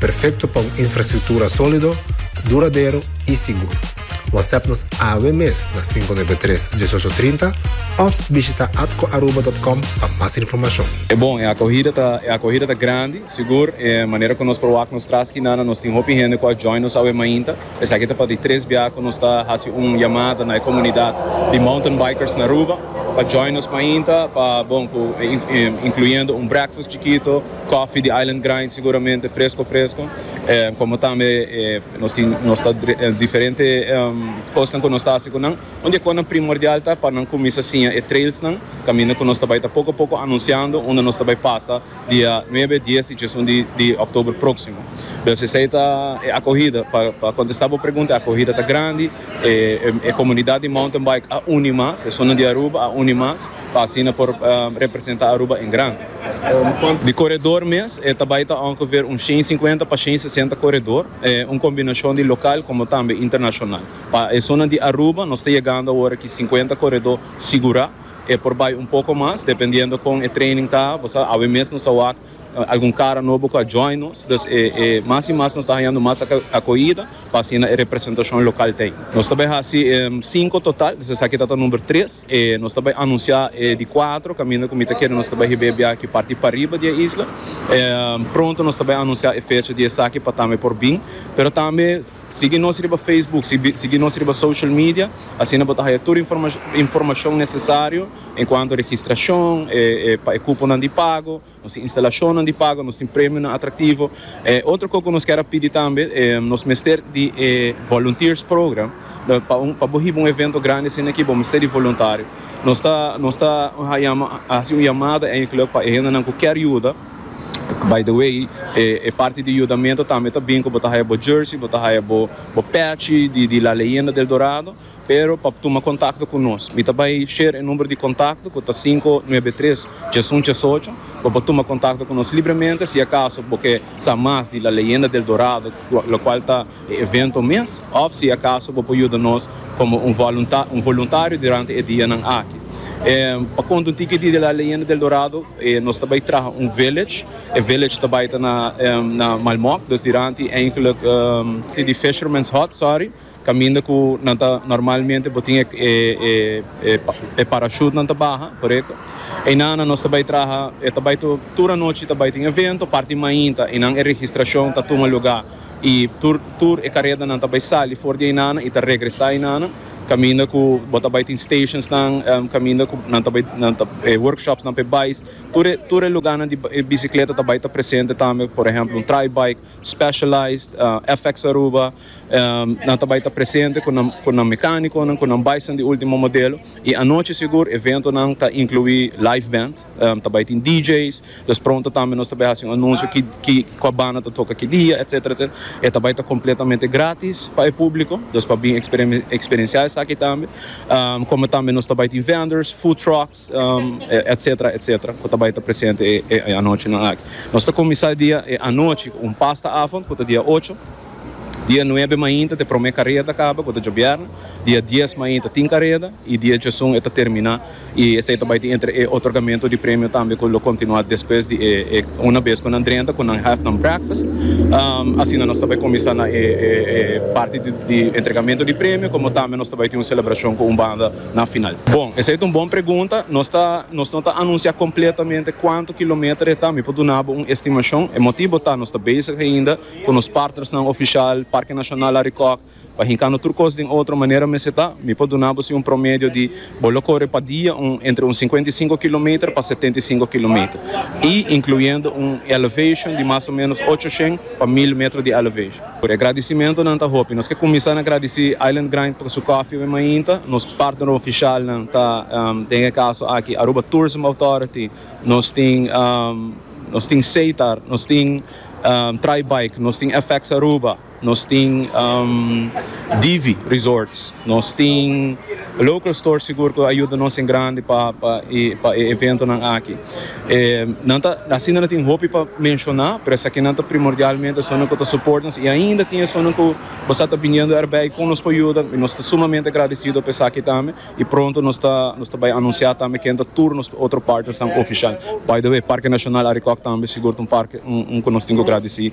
Perfecto pa un infrastructura solido, duradero y sigur. WhatsApp nos awe mes na cinco nuebe tres, dieshocho trinta of bishita atcoaruba.com pa mas informacion. E bon, e acogida ta e acogida ta grandi, sigur, e manera cu nos por wak nos tras skinana nos tin hopi hende cu a join nos awe mainta, esaki ta pa di tres bia cu nos ta haci un yamada na e comunidad di Mountain Bikers na Aruba pa join nos mainta pa bon cu incluyendo un breakfast chikito, Kòfi di Island Grind siguramente fresko fresko komo tambe nos tin nos ta diferente kosnan ku nos ta hasi ku nan. Un di e kosnan primordial ta pa nan kuminsa siña e trailsnan, kaminda ku nos ta bai ta poko poko anunsiando unda nos ta bai pasa dia nuebe, dies i djesun di òktober próksimo. Dus esei ta e akohida. Pa pa kontestá bo pregunta e akohida ta grandi, e komunidat di mountain bike a uni mas, esun nan di Aruba a uni mas. Pa asina por representa Aruba en gran. Di koredor mes e ta bai ta ongeveer un shen sinkuenta pa shen sesenta koredor, un kombinashon di lokal komo tambe internashonal. Pa esunnan di Aruba nos ta yegando awor aki sinkuenta koredor sigurá, e por bai un poko mas dependiendo kon e training ta, bo sa, awe mes nos a wak Algun cara nobo cu a join nos, dus e e mas y mas nos ta hañando mas acoida pa asina e representacion local ta ey. Nos ta bay haci cinco total, dus esaki ta ta number tres, e nos ta bay anuncia e di cuatro caminda cu mi ta kere nos ta bay hib'é e biachi parti pariba di e isla. Pronto nos ta bay anuncia e fecha di esaki pa tambe por bin, pero tambe. Sigui nos riba Facebook, sigui nos riba social media, asina bo ta haya tur informashon nesesario enkuanto registrashon, pa e kuponan di pago, nos tin instalashonnan di pago, nos tin premionan atraktivo. Otro kos ku nos kier a pidi tambe, nos mester di e volunteers program, pa bo hiba un evento grandi asina aki bo mester di voluntario. Nos ta hasi un yamada enkele pa e hendenan ku kier yuda. By the way, e parti di yudamento tambe ta bin ku bo ta haya bo jersey, bo ta haya bo pèchi di La Leyenda del Dorado, pero pa tuma kontakto ku nos, mi ta bai share e number di kontakto ku ta sinku nuebe tres tjes un tjes ocho, bo por tuma kontakto ku nos libremente si akaso bo ke sa mas di La Leyenda del Dorado, lokual ta. e evento mes òf si akaso bo por yuda nos komo un voluntario durante e dianan aki. Pa konta un tiki di La Leyenda del Dorado nos ta bai traha un village, e village ta bai ta na Malmok, dus diranti eindelijk te di Fisherman's Hut, sorry, kaminda ku nan ta normalmente bo tin e parachute nan ta baha, korekto? Einan nan nos ta bai traha, ta bai tur anochi ta bai tin evento, parti mainta einan e registrashon ta tuma lugá. I tur tur e karedanan ta bai sali for di einana i ta regresá einana, kaminda ku bo ta bai tin stationsnan, kaminda ku nan ta bai nan ta e workshopsnan p'e bais. Tur e tur e lugánan di e bisikleta ta bai ta presente tambe, por ehèmpel un Tri-Bike, Specialized, FX Aruba, nan ta bai ta presente ku nan ku nan mekánikonan, ku nan baisnan di último modelo. I anochi sigur eventonan ta inkluí live band, ta bai tin DJ's, Pues pronto tambe nos ta bai haci un anuncio ki cua banda ta toca ki dia etc. E ta bai ta completamente gratis pa e publico, dus pa bin experiencia esaki tambe. Como tambe nos ta bai tin vendors, food trucks etc. Etc. Cu ta bai ta presente e anochinan aki. Nos ta cuminsa e dia e anochi cu un pasta avond cu ta dia ocho, dia nuebe mainta ta e prome careda caba cu ta djobierne, dia dies mainta tin careda y dia djesun e ta termina. y esey ta bay tin entre e otorgamento di premio tambe cu lo continua despues di e una bes cu nan drenta cu nan have nan breakfast asina nos ta bay cuminsa na e parti di entregamento di premio como tambe nos ta bay tin un celebracion cu un banda na final. Bon, esey ta un bon pregunta, nos ta nos no ta anuncia completamente cuanto kilometer e ta, mi por duna bo un estimacion, e motibo ta nos ta bezig ainda cu nos partnersnan oficial, Parke Nacional Arikok, Pa hincano tur cos den otro manera mester ta, mi por duna bo si un promedio di bo lo core pa dia un entre un cincuenta y cinco kilometer pa setenta y cinco kilometer y incluyendo un elevation di mas o menos ochocientos pa mil metro di elevation. Por e gradicimentonan ta hopi. Nos ke cuminsa na gradici Island Grind por su coffee wen mainta. Nos partner oficialnan ta den e caso aki Aruba Tourism Authority, nos tin nos tin Setar, nos tin Tri Bike, nos tin FX Aruba. Nos tin Divi Resorts, nos tin local stores sigur cu a yuda nos en grandi pa e eventonan aki. Nan ta, asina nan tin hopi pa menciona, pero esakinan ta primordialmente esunnan cu ta support nos y ainda tin esunnan cu bo sa ta biniendo erbij con nos por yuda y nos ta sumamente agradecido pa esaki tambe y pronto nos ta nos ta bay anuncia tambe ken ta tur nos otro partnersnan oficial. By the way, Parke Nacional Arikok tambe sigur ta un parke un cu nos tin cu gradeci.